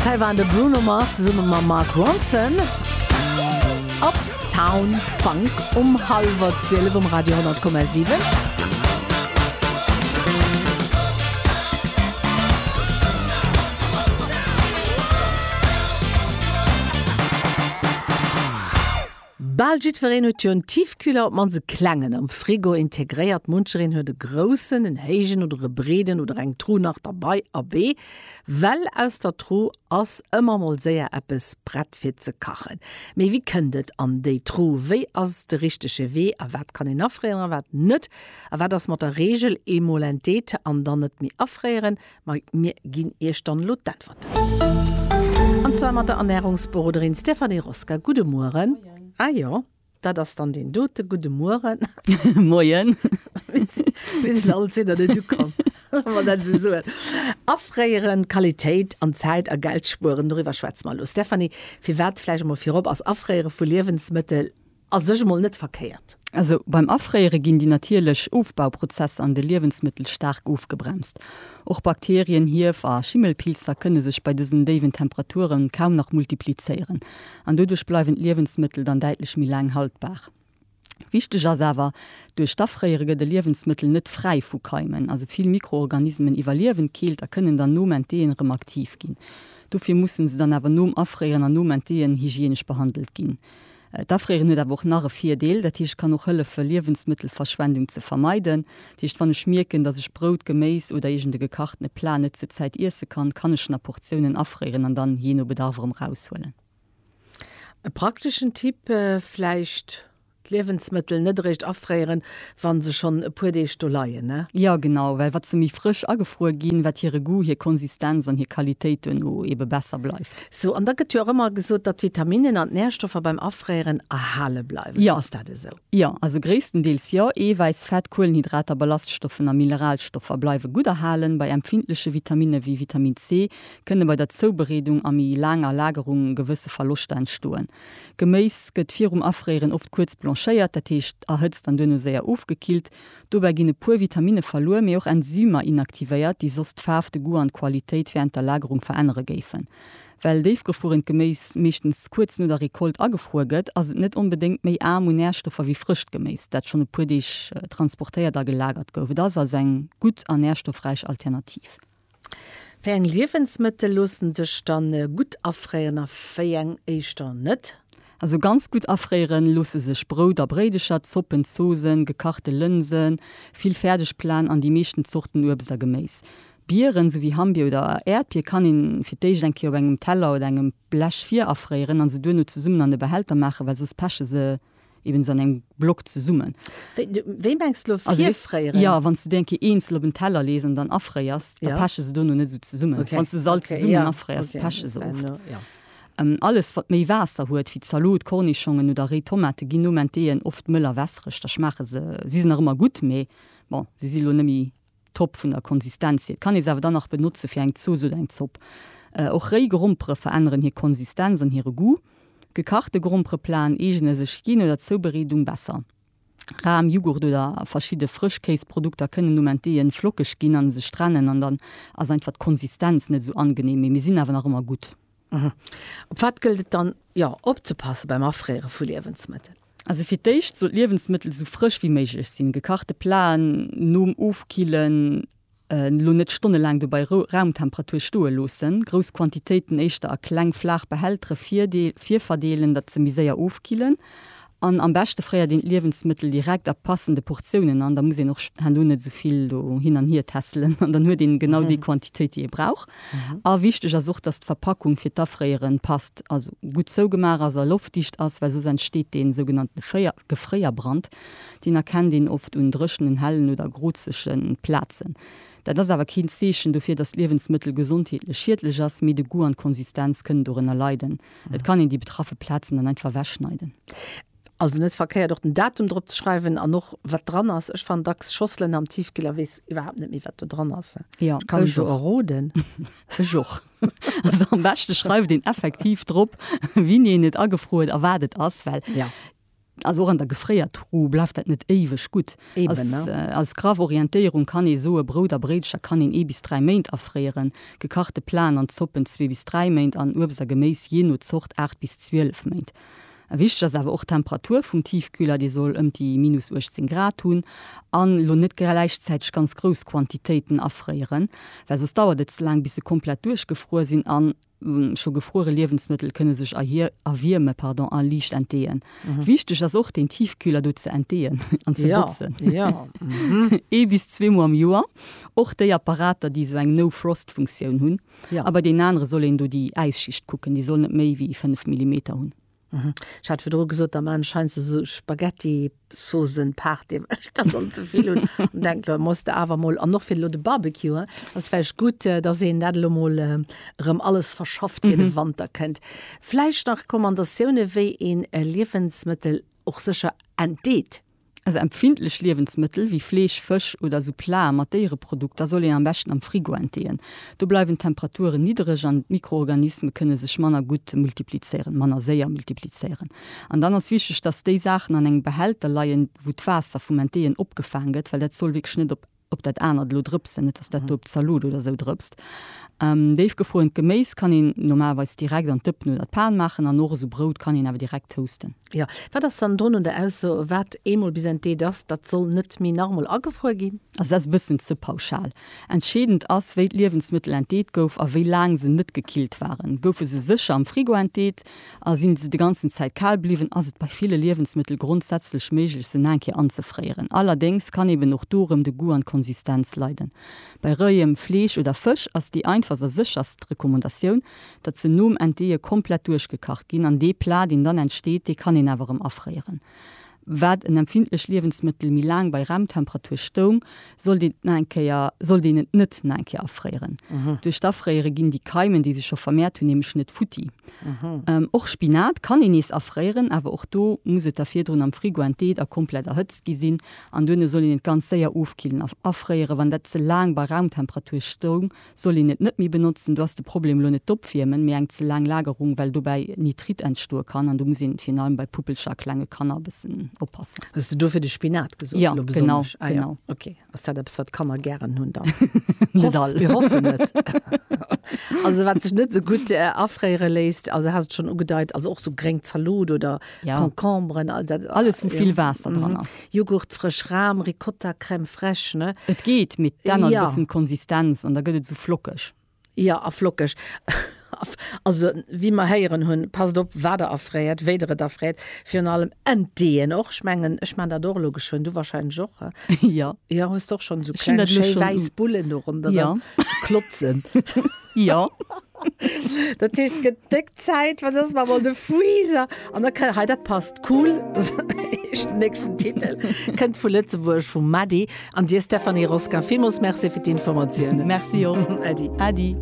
D'Hai waren de Bruno Mars zesumme mam Mark Ronson. Uptown Funk um hallwer 12 um Radio 100,7. Bal jiddwereen huet jo en Tiefkühler, op d'mannst e klengen, am Frigo integréiert. Munchereen huet e groussen, en héijen oder e breeden oder eng Tru nach derbei. Abee, well aus der Tru ass ëmmer mol séier eppes prett fir ze kachen. Mee wéi kënnt et an déi Tru? Wéi ass de richtege Wee? A wat kann een afréieren a wat net? A wat ass mat der Reegel, eemol entdeet an dann net méi afréieren? Ma mir ginn Iech dann elo d'Äntwerten. An zwar mat der Ernährungsberoderin Stéphanie Roska. Gudde Mueren. Ah jo, dat ass dann deen dote. Gudde Mueren. Moien. Bis elo alt sidd Der net ukomm, wa mer dat esou soen. Afréieren, Qualitéit an Zäit a Geld spueren, doriwwer schwätze mer elo. Stéphanie, firwat, vläicht emol virop, ass Afréiere vu Liewensmëttel, A sech emol net verkéiert. Also beim Afréiere ginn déi natierlech Ofbauprozesser an de Liewensmëttel staark ofgebremst. Och Bakterien, Hief a Schimmelpilzer kënne sech bei dësen déiwen Temperature kaum nach multiplizéieren an doduerch bleiwen d'Liewensmëttel dann däitlech méi laang haltbar. Wichteg ass awer, Duerch d'Afréiere gëtt e Liewensmëttel net fräi vu Keimen. Also vill Mikroorganismen iwwerliewen d'Keelt a kënnen dann nom Entdeeën erëm aktiv ginn. Dofir mussen se dann awer nom Afréieren an nom Entdeeën hygienesch behandelt ginn. D'Afrieren huet awer och nach e Virdeel, dat heescht, et kann och hëllefen, Liewensmëttelverschwendung ze vermeiden. Dat heescht, wann ech mierken, dass ech Brout, Geméis oder iergend e gekachtene Plat net zur Zäit iesse kann, kann ech en a Portiounen afrieren an dann jee no Bedarf erëm eraushuelen. E prakteschen Tipp vläicht, D'Liewensmëttel net eréischt afrieren, wa se schonn e puer Deeg do leien? Jo, genau, well wat se méi frësch agefruer ginn, wat hire Goût, hir Konsistenz an hir Qualitéit duerno ebe besser bleift. Sou, an da gëtt jo och ëmmer gesot, datt d'Vitaminen an d'Närstoffer beim Afréieren erhale bleiwen. Jo. Ass dat esou? Jo, also gréisstendeels jo. Eewäiss, Fett, Kuelenhydrater, Ballaststoffen a Mineralstoffer bleiwe gutt erhalen. Bei empfindleche Vitaminne wéi Vitamin C kënne bei der Zoubereedung a méi laanger Lagerung gewësse Verloschter entstoen. Geméis gëtt virum Afréieren oft kuerz blanchéiert, dat heescht erhëtzt an duerno séier ofgekillt. Dobäi ginn e puer Vitaminne verluer, mee och Enzymer inaktivéiert, déi soss d'Faarf, de Goût an d'Qualitéit wärend der Lagerung verännere géifen. Well déifgefruerent Geméis meeschtens kuerz no der Recolte agefruer gëtt, ass et net onbedéngt méi aarm un Närstoffer wéi frëscht Geméis, dat schonn e puer Deeg transportéiert a gelagert gouf. Et ass also eng gutt a närstoffräich Alternativ. Wéi eng Liewensmëttel loossen sech dann gutt afréieren a wéi eng éischter net? Also ganz gutt afréieren loosse sech Brout a Bréidecher, Zoppen, Zoosen, gekachte Lënsen, vill Fäerdegplaten an déi meeschten Zorten Uebst a Geméis. Bieren, sou wéi Hammbier oder Äerdbier, kann een fir d'éischt eng Kéier op engem Teller oder engem Blech virafréieren an se duerno zesummen an e Behälter maachen, well soss peche se eben an engem Block zesummen. Wéi mengs du elo virfréieren? Jo, wann s du déi eng Kéier eenzel op en Teller lees an dann afréiers, da peche se dono net esou zesummen. Wann s du se all zesummen afréiers, peche se oft. Alles, wat méi Waasser huet, wéi Zalot, Kornischongen oder réi Tomate, ginn nom Enteeën oft mëll a wässereg. Da schmaache se, si se nach ëmmer gutt, mee bon, se si elo net méi Top vun der Konsistenz hier. Et kann ee se awer dann nach benotze fir eng Zooss oder eng Zopp. Och réi Grompere veränneren hir Konsistenz an hire Goût. Gekachte Grompereplaten eegene sech jee no der Zoubereedung besser. Ram, Jughurt oder verschidde Frëschkéisprodukter kënnen nom Entdeeën flockeg ginn an sech trennen an dann ass einfach d'Konsistenz net esou angenehm, mee mir sinn awer nach ëmmer gutt. Op wat gëllt et dann jo opzepassen beim Afréiere vu Liewensmëttel? Also fir d'éischt soll d'Liewensmëttel esou frësch wéi méiglech sinn. Gekachte Platen nom Ofkillen elo net stonnelaang do bei Raumtemperatur stoe loossen. Grouss Quantitéiten éischter a kleng flaach Behältere virverdeelen, datt se méi séier ofkillen. An am beschte fréiert een d'Liewensmëttel direkt a passende Portiounen an, da muss een och herno net esou vill do hin an hier tässelen an dann huet een genau déi Quantitéit déi ee brauch. A wichteg ass och, dass d'Verpackung fir d'Afréieren passt, also gutt zougemaach ass a loftdicht ass, well soss entsteet dee sougenannten Gefréierbrand. Deen erkennt een oft un dréchenen, hellen oder grozege Plazen. Dat ass awer keen Zeechen dofir, dass d'Liewensmëttel gesondheetlech schiedlech ass, mee de Goût an d'Konsistenz kënnen dorënner leiden. Et kann een déi betraffe Plazen dann einfach ewechschneiden. Also net verkéiert och den Datum drop ze schreiwen an och wat dran ass. Ech fannen dacks Schosselen am Tiefkühl a weess iwwerhaapt net méi wat do dran ass. Jo, ech kann ech jo och. Erroden. Ech och. Also am beschte schreift een effektiv drop wien een et agefru huet a wat et ass, well. Jo. Also och an der Gefréiertruh bleift dat net éiweg gutt. Als graff Orientéierung kann ee soe, Brout a Bréidscher kann een ee bis dräi Méint afréieren, gekachte Plaen an Zoppen zwee bis dräi Méint an Uebst a Geméis jee no Zort aacht bis zwielef Méint. Wichteg ass awer och d'Temperatur vum Tiefkühler, dee soll ëmt déi minus 18 Grad hunn an elo net gläichzäiteg ganz grouss Quantitéiten afréieren, well soss dauert et ze laang bis se komplett duerchgefruer sinn an Scho gefruere Liewensmëttel kënne sech erwierme a liicht entdeeën. Wichteg ass och, den Tiefkühler do ze entdeeën an ze botzen. Ee bis zwee Mol am Joer. Och déi Apparater, déi esou eng No-Frost-Funktioun hunn. A bei deenen anere soll een do déi Äisschicht kucken, déi soll net méi wéi 5 Millimeter hunn. Mhm. Ech hat virdru gesot, da man scheinst du so Spaghetti-Sosen paart dem ech dat dann ze vill hunn und denk lo muss de awer mol an noch fir lo de Barbecue ass vläicht gutt, äh, dass een dat lo mol äh, rëm alles verschafft ier de mhm. Wanter kënnt. Vläicht nach Recommandatioune wéi een äh, Liewensmëttel och sécher entdeet. Also empfindlech Liewensmëttel wéi Fleesch, Fësch oder esou Plate mat Déiereprodukter soll een am beschten am Frigo enteeën. Do bleiwen d'Temperaturen niddereg an d'Mikroorganisme kënne sech manner gutt multiplizéieren, manner séier multiplizéieren. An dann ass wichteg, dass déi Saachen an engem Behälter leien, wou d'Waasser vum Enteeën opgefaang gëtt, well dat soll wierklech net op. ob dat anert elo drëpsen, net dass dat do op d'Zaloot oder esou drëpst. Déif gefruerent Geméis kann een normalerweis direkt an d'Dëppen oder d'Pan maachen an och esou Brout kann een awer direkt toasten. Jo, wat ass dann drun un der Ausso, wat eemol bis ent Deet ass, dat soll net méi nach emol agefruer ginn? Also dat ass e bëssen ze pauschal. Entscheedend ass, wéi d'Liewensmëttel ent Deet gouf a wéi laang se net gekillt waren. Goufe se sécher am Frigo ent Deet, A sinn se de ganzen Zäit kal bliwwen, ass et bei ville Liewensmëttel grondsätzlech méiglech se naeng Kéier anzefréieren. Allerdéngs kann eben och do erëm de Goût an d'Konsistenz leiden. Bei roiem Fleesch oder Fësch ass déi einfachst a sécherst Recommandatioun, datt se nom Entdeeë komplett duerchgekacht ginn an dee Plat deen dann entsteet, dee kann een awer erëm afréieren. Wat en empfindlecht Liewensmëttel méi laang bei Raumtemperatur stoung, sollt een et na eng Kéier, sollt een et net na eng Kéier afréieren. Duerch d'Afréiere ginn déi Keimen, déi sech scho vermehrt hunn, nämlech net futti. Och Spinat kann een nees afréieren, awer och do muss et da virdrun am Frigo enteet a komplett erhëtzt gi sinn. An duerno soll een et ganz séier ofkillen. Afréiere wann dat ze laang bei Raumtemperatur stoung, soll een et net méi benotzen. Do ass de Problem elo net d'Opwiermen, mee eng ze laang Lagerung, well dobäi Nitrit entstoe kann. An do muss een virun allem bei puppelcher a klenge Kanner e bëssen oppassen. Hues de dofir de Spinat gesot? Jo, genau, genau. Ok, ass dat eppes, wat d'Kanner gären hunn dann? Net all. Mir hoffen net. Also wat sech net esou gutt afréiere léisst, also haas et schonn ugedeit, also och esou gréng Zalot oder ja. Concombren, all dat, alles vu vill Waasser mm -hmm. dran ass. Joghurt, frësch Ram, Ricotta, Crème fraîche, ne? Et geet mit dann ja. bëssen Konsistenz an da gëtt et so flockeg. Ja a flockeg. Also wie mer héieren hunn, passt op wat der erfréiert, wéi der et erfréiert, virun allem Entdeen och. Ech mengen ech mein dat och elo geschwënn, du warscheinlech och. Ja. Ja hues och schonn so kleng schéi wäiss Bullen do ronderen, ja. klotzen. Ja. Dat heescht gedéckt Zäit, wat ass mar mol de Freezer? An da kann, hei dat passt, cool, den nächsten Titel kënnt vu Lëtzebuerg, vum Mady an dir Stéphanie Roskin. Villmools Merci fir d'Informatiounen. Merci och. Äddi. Äddi.